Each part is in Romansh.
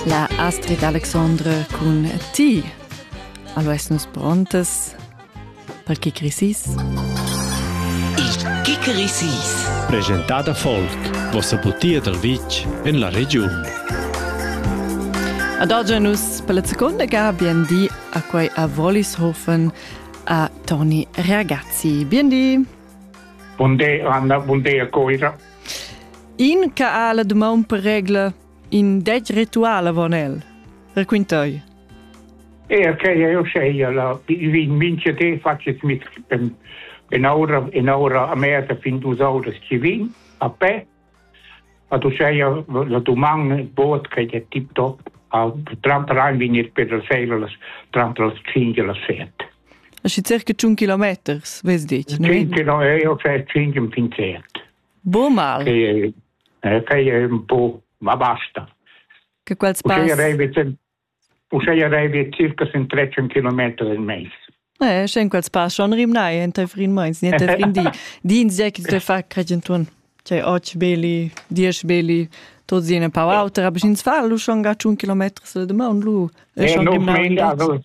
La Astrid Alexandre cun ti. Allo essenos prontes per chi crisis? Il chi crisis. Presentada folk, vossa butia dal vitg en la regiun. Ad oggi nus per la seconda ga biendi a quei a Wollishofen a Toni Ragazzi. Biendi! Buondì, Anna, buondì a Coira. In che ha la dumon per regla in dec ritual avon el. Raquintai. E ok, io sei la vin vince te facet mit en en aura en aura a me ta fin du saudas ci vin a pe a tu sei la duman boot che è tip top a trant rein vinir per la seila las trant las cinque la set Aschi circa tschun kilometers, vess detg, ne? 10 km heißt 5 im Pinzert. Bo mal. Fai, eh, fai un po', ma basta. Che quel spass... Uscei arrivi circa sin 13 km in meis. Eh, scen quels pass schon rimnai enta frin meins, niente frin di. Di in zec te fa credentun. Cioè, oggi belli, diesch belli, tot zine pau auter, aber ins fa lu schon ga 1 km se de maun lu. E schon gimnau in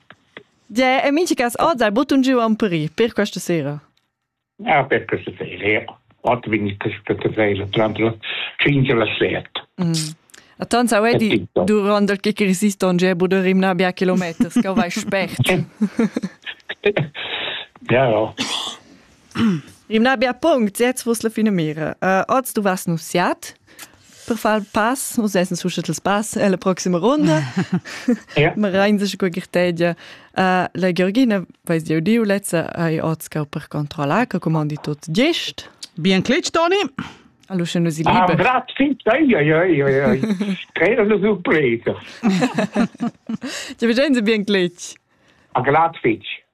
Gia, e minchas oz hai buttun giu am peri per questa sera. Ja, per questa sera. Ott bin ich questa sera, tranne finge la slet. Mm. A tanto vedi durante che resiston ge buderim na bia kilometers che vai spert. ja. Im na bia punct, jetzt vos la fine mira. Uh, oz du vas nussiat per far il pass, nus essen suscet il pass alla prossima ronda. ja. Ma rein sich gut gitedia. Uh, la Georgina, weiß dir die letzte, hai oz ka per controllar, che comandi tot gest. Bien clic, Toni. Allora se non si ah, libera. Ah, grazie, ai ai ai ai ai. Era una sorpresa. Ti vedi bien clic. A glad fitch.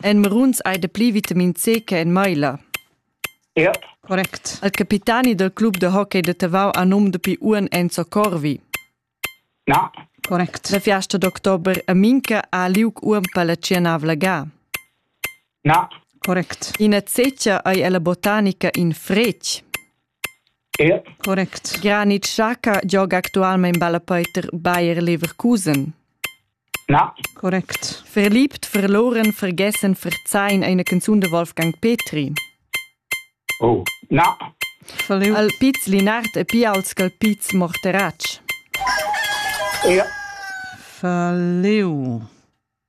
En maruns hai dapli vitamin C che en maila. Correct. Il capitani del club de hockey de Tavau ha num dapi uan Enzo Corvi. Na. Correct. La fiasta d'october a Minca ha liug uan per la cianavla ga. Na. Correct. Ina zecia ei ella botanica in fretg. Correct. Granit Xhaka gioga actualmein ballapeiter Bayer Leverkusen. Na. Correct. Verliebt, verloren, vergessen, verzeihen eine Canzun de Wolfgang Petri. Oh, na. Salut. Al Piz Linard e Pials cal Piz Morterach. Ja. Faleu.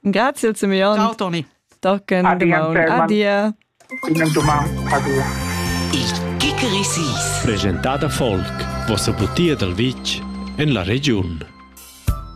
Grazie Simeon. Ciao Toni. Tocken Adia. Il Kickerisis. Presentada folk, vossa butia dal vitg en la regiun.